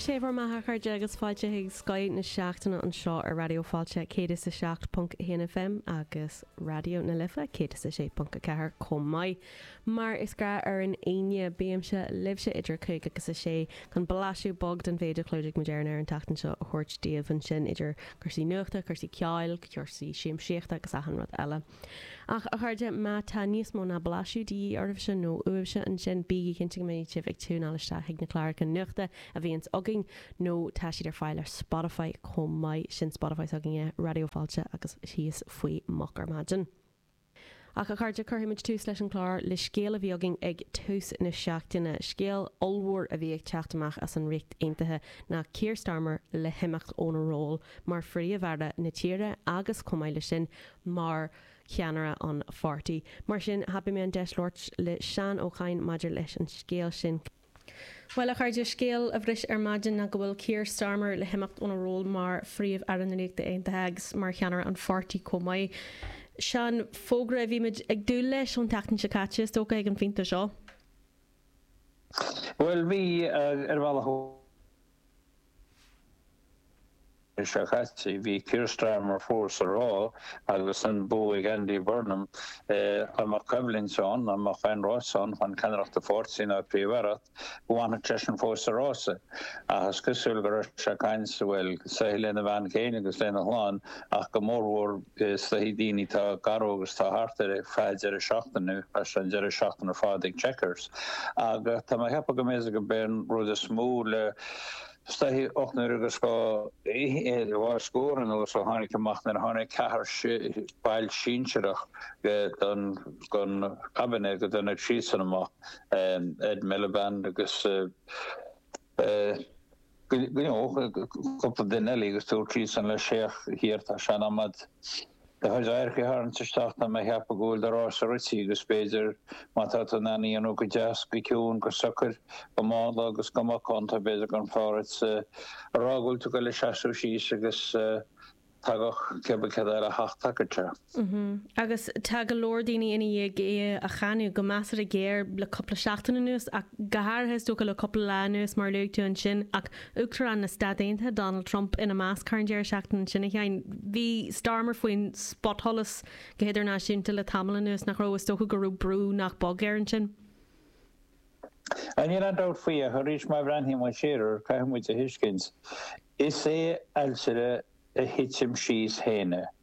Sé bhur mbeatha, a chairde, agus fáilte chuig Scoth na Seachtaine anseo ar Raidió Fáilte 107.1 FM agus Raidió na Life 106.4 chomh maith. Mar is gnách ar an Aoine, bímse libhse idir a cúig agus a sé chun blaiseadh beag den mhéid a chlúdaigh muid ar an aer an tseachtain seo a thabhairt daoibh ansin, idir cúrsaí nuachta, cúrsaí ceoil, cúrsaí siamsaíochta agus achan rud eile. Ach, a chairde, má tá níos mó ná blaiseadh de dhíth oraibhse, nó uaibhse, ansin, bígí cinnte go mbeidh sibh ag tiúineáil isteach chuig na cláracha nuachta a bhíonns againn, nó tá siad ar fáil ar Spotify chomh maith, sin Spotify s'againne, Raidió Fáilte agus thíos faoi Moch ar Maidin. Ach, a chairde, cuirfidh muid tús leis an chlár le scéal a bhí againn ag tús na seachtaine, scéal ollmhór a bhí ag teacht amach as an Ríocht Aontaithe, ná Keir Starmer le himeacht óna ról mar phríomh-aire na tíre agus, chomh maith leis sin, mar cheannaire an pháirtí. Mar sin, thapaigh mé an deis labhairt le Seán Ó Cadhain maidir leis an scéal sin. Bhuel, a chairde, scéal a bhris ar maidin ná go bhfuil Keir Starmer le himeacht óna ról mar Phríomh-Aire na Ríochta Aontaithe agus mar cheannaire an pháirtí chomh maith. Seo an fógra a bhí muid ag dúil leis ón tseachtain seo caite, is dócha, ag an phointe seo. Bhuel, bhí, ar bhealach. Leis seo caite, bhí Keir Starmer fós ag rá agus an bua ag Andy Burnham. Dá mbeadh coimhlint ann, dá mbeadh aon rás ann chun ceannaireacht an pháirtí nó an phríomh-aireacht, go bhfanfadh seisean fós sa rása. Ach is cosúil go raibh sé ag caint, bhuel, is dóigh lena bhean féin agus lena chlann ach go mórmhór is dóigh daoine atá gar dó agus atá thart air ar feadh deireadh seachtaine, chaith sé an deireadh seachtaine ar fad ag Chequers. Ach tá mé ag ceapadh go mb'fhéidir gurb é an rud is mó le. Is dóigh le ocht n-uaire agus dhá scór anuas ó tháinig amach nuair a tháinig ceathrar baill sinsearach den Cabinet go dtáinig siadsan amach, Ed Miliband agus cúpla duine eile agus dúirt siadsan leis, féach, Keir, tá sé in am agat. Do chuid adharca a tharraingt isteach, tá mé ag ceapadh go bhfuil do rása rite agus b'fhéidir má tá tú in ann é a dhéanamh go deas, go ciúin, go socair, go mánla agus go macánta b'fhéidir go mb'fhearr duit a rá go bhfuil tú ag dul a seasamh síos agus tagadh cibé céard eile a theacht, tagadh sé. Agus tá go leor daoine i ndiaidh é a cháineadh go measartha géar le cúpla seachtain anuas ach go háirithe is dócha le cúpla lá anuas mar a luaigh tú ansin ach Uachtarán na Stát Aontaithe, Donald Trump, ina measc thar an deireadh seachtaine ansin, a Sheáin. Bhí Starmer faoin spotsholas go hidirnáisiúnta le tamall anuas, nach raibh? Is dócha go raibh brú nach beag air ansin. Níl aon dabht faoi ach arís má bhreathnaíonn muid siar air, caithfidh muid a thuiscint, is é ailtire a thitim síos féin é.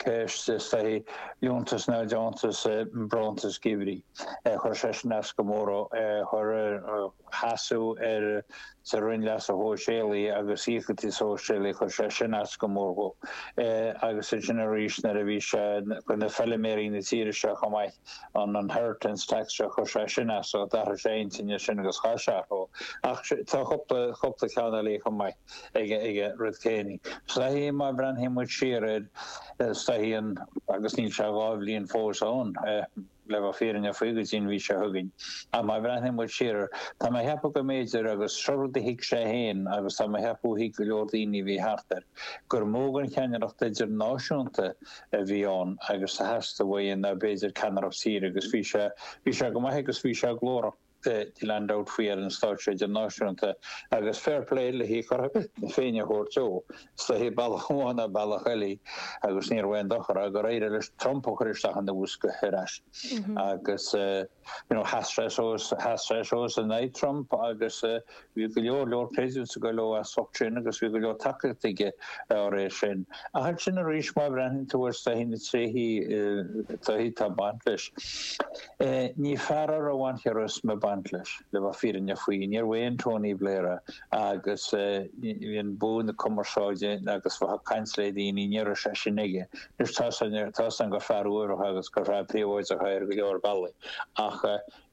Ceist is dóigh, liúntas nó deontas bronntanas geimhridh. Chuir sé sin as go mór ar sheasamh ar sa Roinn Leasa Shóisialaigh agus Íocaíochtaí Sóisialaigh, chuir sé sin as go mór dhó. Agus ansin arís nuair a bhí sé chuir na feilméaraí na tíre seo chomh maith an inheritance tax seo, chuir sé sin as, d'athraigh sé a intinn ansin agus chaith sé orthu. Ach tá cúpla, cúpla ceann eile chomh maith. aige rud céanna. Is dóichí, má bhreathnaíonn muid siar air, is dóichí an, agus níl sé dhá bhliain fós ann, le bheith fírinneach faoi go dtí an mhí seo chugainn, ach má bhreathnaíonn muid siar air, tá mé a cheapadh go mb'fhéidir, agus seo rud a thuig sé féin agus tá mé a cheapadh a thuig go leor daoine a bhí thart air, gur mó den cheannaireacht idirnáisiúnta a bhí ann agus a theastaigh uaidh ná b'fhéidir ceannaireacht tíre agus bhí sé, bhí sé go maith agus bhí sé glórach. níl aon dabht faoi ar an stáitse idirnáisiúnta agus fair play le cothrom na Féinne a thabhairt dó. Is dóichí bealach amháin ná bealach eile agus ní raibh aon dochar ann gur éirigh leis Trump a chur isteach ina bhosca ar ais agus, you know, sheas sé suas, sheas sé suas in aghaidh Trump agus, Bhí go leor leor praise ag goil dhó as ucht sin agus bhí go leor tacaíochta aige dá réir sin. Ach ansin arís má bhreathnaíonn tú ar is dóichí na tréithí taithí atá ag baint leis, ní fear a raibh aon charisma ag baint leis, le bheith fírinneach faoi. Níorbh aon Tony Blair é agus bhí an bua na cumarsáide agus bheith ag caint le daoine, ní raibh sé sin aige. Anois tá a fhios againn, tá a fhios againn gur fear uaibhreach agus gur fear príobháideach é ar go leor bealaí ach,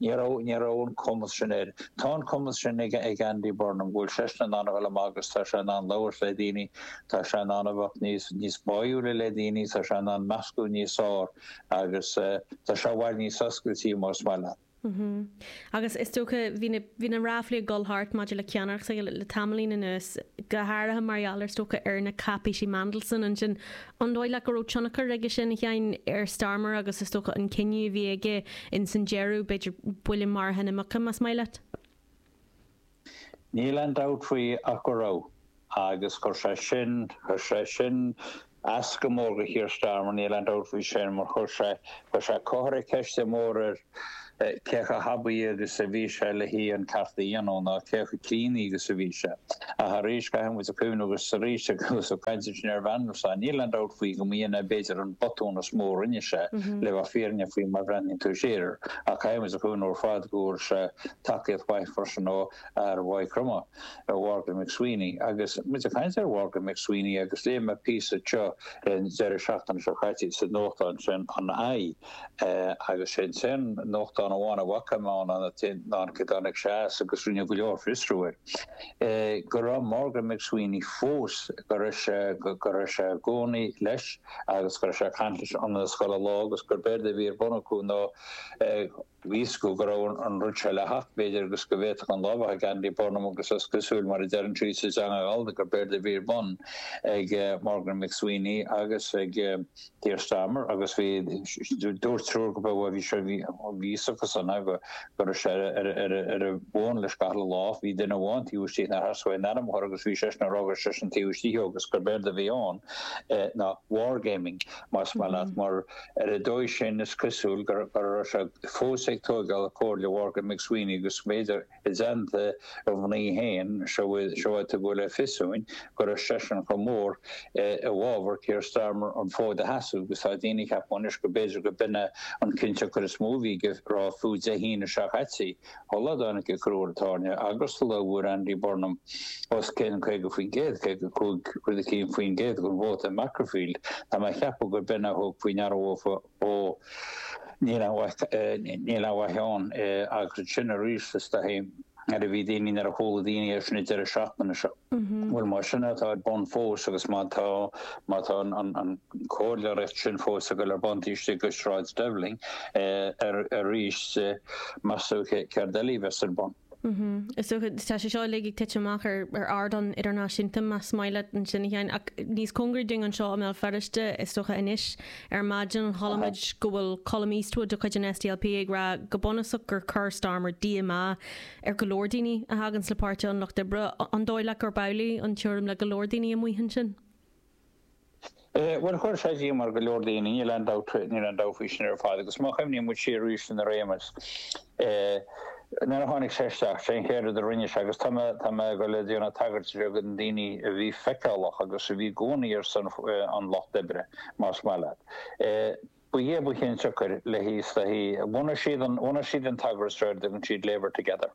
Ní raibh, ní raibh an cumas sin air. Tá an cumas sin ag, ag Andy Burnham, go bhfuil seisean in ann a dhul amach agus tá sé in ann labhairt le daoine, tá sé in ann a bheith níos, níos báúla le daoine, tá sé in ann meascadh níos fearr agus tá sé i bhfad níos oscailtí más maith leat. Mm-hmm. Agus is dócha, bhí na, bhí na ráflaí ag dul thart maidir le ceannaireacht s'aige le, le tamaillín anuas, go háirithe mar gheall ar, is dócha, ar na cáipéisí Mandelson ansin An dóigh leat go raibh tionchar aige sin, a Sheáin, ar Starmer agus is dócha an cinneadh a bhí aige ins an deireadh, b'fhéidir, buille maraithe na muice, más maith leat? Níl aon dabht faoi ach go raibh. Agus chuir sé sin, chuir sé sin as go mór do Keir Starmer, níl aon dabht faoi sin, mar chuir sé, chuir sé, chuir sé ceist mór ar, cé chomh haibí agus a bhí sé le, an ceart a dhéanamh ná cé chomh críonna agus a bhí sé. Ach arís, caithfidh muid a chuimhneamh agus arís agus ag caint ansin ar Mhandelson, níl aon dabht faoi go mb'in é b'fhéidir an botún is mó a rinne sé, le bheith fírinneach faoi má bhreathnaíonn tú siar air, ach caithfidh muid a chuimhneamh ar fad go bhfuair sé tacaíocht mhaith freisin ó fhear Mhaigh Chromtha, Mhorgan McSweeney. Agus muid ag caint ar Mhorgan McSweeney agus léigh mé píosa teo an deireadh seachtaine seo caite sa nuachtán sin an i, Agus sé an nuachtán amháin a bhfaca mé ann an t-aon cheann acu seo agus rinneadh go leor fiosrú air, go raibh Morgan McSweeney fós, go raibh sé, go raibh sé i gcónaí leis agus go raibh sé ag caint leis achan uile lá agus gurb éard a bhí ar bun acu ná Bhí a fhios go go raibh an rud seo le theacht, b'fhéidir, agus go bhféadfadh an lámh a bheith ag Andy Burnham, agus is cosúil, mar a deireann siad sa teanga Ghallda, gurb éard a bhí ar bun ag Morgan McSweeney agus ag Keir Starmer, agus bhí, dúirt triúr go beo, bhí sé, bhí a fhios acusan, a, go, go raibh sé ar a, ar a, bhuan leis gach uile lámh, bhí duine amháin taobh istigh nár theastaigh aon ainm a chur agus bhí seisean ag rá gur seisean taobh istigh agus gurb éard a bhí ann ná wargaming, más maith leat, mar. Ar an dóigh sin, is cosúil go raibh sé fós ag tóigeáil a chomhairle Mhorgan McSweeney agus b'fhéidir i dteannta a mhnaoi féin, sa mhéid is gur tugadh le fios dúinn go raibh seisean chomh mór i bhfabhar Keir Starmer an fód a sheasamh agus tá daoine ag ceapadh anois go mb'fhéidir gurb in é an cinnteacht cur is mó a bhí aige rá fiú Dé hAoine seo caite. Uladh a tháinig ag cur Ard Tábhairne Agustala a bhfuair Andy Burnham os cionn 50%, 55.1%, den vóta i Makerfield, tá mé ag ceapadh gurb in a thug faoi ndeara dóibh ó níl aon mhaith ann agus ansin arís is dóichí mar a bhí daoine nuair a chuala daoine é sin an deireadh seachtaine seo. Bhuel, más sin atá ar bun fós, agus má tá, má tá an comhairleoireacht sin fós ag dul ar bun taobh istigh de Shráid Downing arís, meas tú céard eile a bheas ar bun? Is dócha, tá sé seo uilig ag titim amach ar ardán idirnáisiúnta, más maith leat ansin a Sheáin, ach níos cóngaraí dúinn anseo i mBéal Feirste, is dócha anois ar maidin chuala muid go bhfuil Colum Eastwood de chuid an SDLP ag rá go bunúsach gur chuir Starmer díomá ar go leor daoine a thacaíonn le Páirtí an Lucht Oibre, an dóigh leat gurb amhlaidh an tuairim le go leor daoine amuigh ansin? Bhuel, chuir sé díomá ar go leor daoine, níl aon dabht, níl aon dabht faoi sin ar fad agus má chuimhníonn muid siar arís ar a réimeas, nuair a tháinig sé isteach, sé an chéad rud a rinne sé agus tá mé, tá mé ag dul a dhéanamh tagairt bheag do na daoine a bhí feiceálach agus a bhí i gcónaí ar son an Lucht Oibre, más maith leat. Ba é ba chionsiocair leis is dóichí, bhunaigh siad an, bhunaigh siad an t-eagras seo ar a dtugann siad Labour Together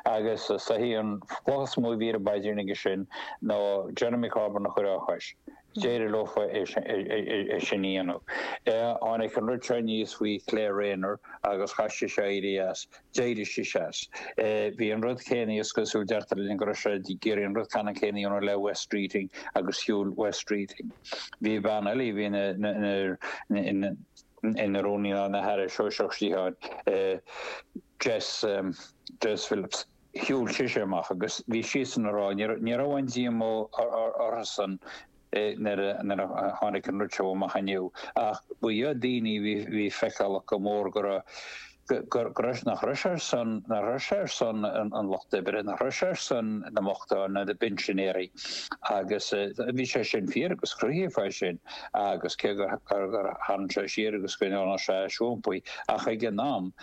agus is é an chloch is mó a bhí ar an bpaidrín aige sin ná Jeremy Corbyn a chur dá chois. D'éirigh leo é sin a dhéanamh. Tháinig an rud seo aníos faoi Claire Rayner agus chaith sí seo éirí as. D'éirigh sí as. Bhí an rud céanna, is cosúil, deirtear linn go raibh sé ag iarraidh an rud ceannann céanna a dhéanamh le Wes Streeting agus shiúil Wes Streeting. Bhí bean eile, a bhí ina, ina, ina rúnaí ná ina haire sóisearach sciatháin, Jess, Jess Phillips, shiúil sise amach agus bhí siadsan ag rá, ní raibh, ní raibh aon díomá orthusan nuair a tháinig an rud seo amach inniu, ach ba dheacair do dhaoine a bhí feiceálach go mór go raibh, go raibh, nach raibh sé ar son, nach raibh sé ar son an lucht oibre, nach raibh sé ar son na mbochtán, na pinsinéirí agus bhí sé sin fíor agus cruthaíodh é sin agus cé gur tharraing sé siar agus go ndearna sé siompaí ach ag an am,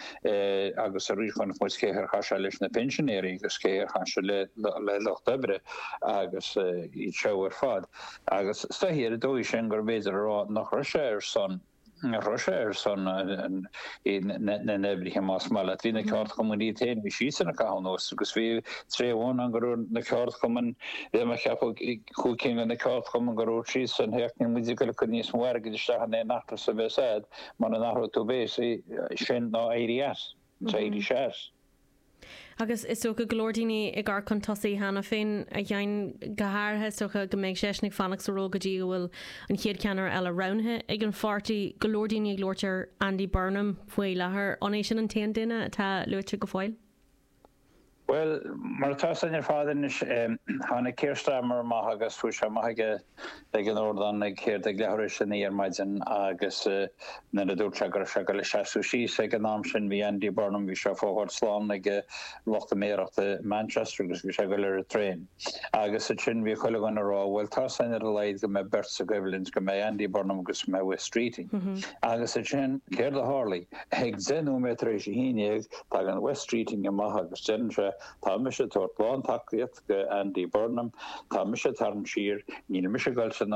agus arís chonaic muid céard a tharla leis na pinsinéirí agus céard a tharla le lucht oibre agus iad seo ar fad agus stoitheadh ar an dóigh sin gurbh fhéidir a rá nach raibh sé ar son, nach raibh sé ar son na n-oibrithe más maith leat. Bhí na ceardchumainn féin, bhí siadsan ag caitheamh anuas agus bhí tréimhse amháin ann go raibh na ceardchumainn, bhí mé ag ceapadh cúig cinn de na ceardchumainn go raibh siadsan, théacht, níl muid ag goil acu níos mó airgid isteach in aon eachtra sa mbeas a'd. Mura n-athróidh tú béasaí, sin ná éirí as, ná éirí as. Agus is dócha go leor daoine ag amharc chun tosaigh cheana féin, a Sheáin, go háirithe is dócha go mbeidh seisean ag fanacht sa ról go dtí go bhfuil an chéad cheannaire eile roghnaithe ag an pháirtí. Go leor daoine ag labhairt ar Andy Burnham faoi láthair, an é sin an t-aon duine atá luaite go fóill? Bhuel, mar atá sé ar fad anois, tháinig Keir Starmer amach agus bhí sé amuigh aige ag an ardán ag céard, ag leathuair tar éis a naoi ar maidin agus nuair a dúirt sé go raibh sé ag dul ag seasamh síos, ag an am sin bhí Andy Burnham, bhí sé ag fágáil slán ag lucht a méaracht i Manchester agus bhí sé ag dul ar an traein. Agus ansin bhí chuile dhuine a rá, bhuel tá seans ar a laghad go mbeidh beirt sa gcoimhlint, go mbeidh Andy Burnham agus go mbeidh Wes Streeting. Agus ansin céard a tharlaigh? Ag deich nóiméad tar éis a haon dhéag, Tagann Wes Streeting amach agus deireann sé, Tá mise ag tabhairt lán tacaíocht go Andy Burnham, tá mise ag tarraingt siar, níl mise ag dul trina